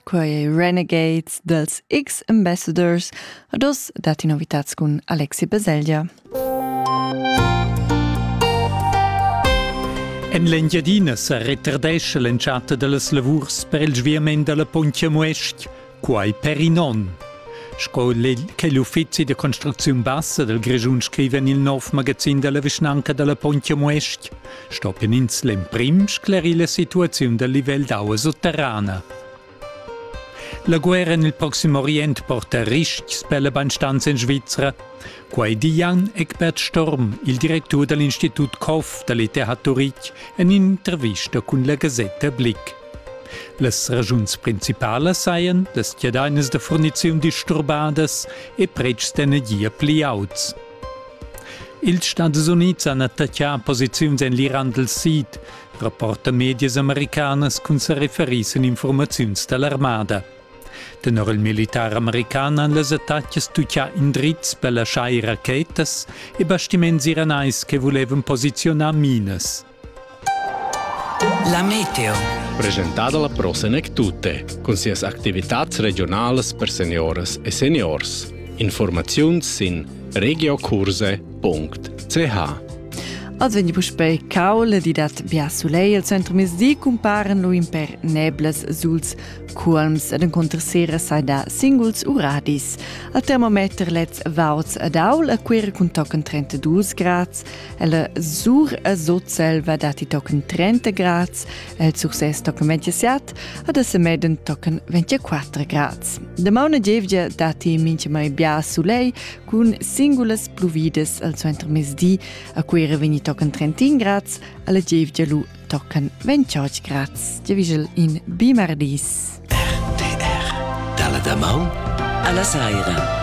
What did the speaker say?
Quai è Renegades dals X-Ambassadors. Ad oz datti novitats cun Alexi Baselgia. En l'Engiadina sa retardescha l'entschatta da las lavurs per il sviament da la Pontja Muestg. Quai per in onn. Sco che l'uffizi da construcziun bassa dal Grischun scriva en il nov magazin da la vischnanca da la Pontia Muestg, stoppien ins l'emprim sclerir la situaziun dal livel d'aua sotterrana. La guerra en il Proxim Orient porta ristgs per la bandstanza in Svizra. Quai di Jan Eckbert Storm, il directur dall'Institut Koff dall'ITH Turitg, en in'intervista cun la Gazetta Blick. Las ragiuns principalas sajan las chiadainas da furniziun disturbadas e pretschs d'energia pli auts. Ils Stadis Unids han attaccà posiziuns en l'Iran dal Sid, rapporta medias americanas cun sa referir sin informaziuns da l'armada. Tenor il militar american han las attacas tuccà indrizs per laschar ir rachetas e bastiments iranais che vulevan posiziunar minas. La meteo. Presentada la prosenek tutte, cun sias activitats regionalas per seniores e seniors. Informaziuns sin regiokurse.ch Az vegni puspei caul di dat bia sulei al centro mesdi cumparen lu in per neblas suls cuolms ed encontrer sera sai da singuls uradis. Al termometer lez vauts ad aul a quera cun tochen 32 grads, Ella sur a Sutselva datti tochen 30 grads, el sur ses tochen 27, ad a Semeden tochen 24 grads. De mauna gievgia datti mincha mai bia sulei cun singulas pluvidas al suenter mesdi, a Cuira vegni tochen 31 grads, alla gievgia lu tochen 28 grads. Giavigel in bimardis. RTR, dalla damaun alla saira.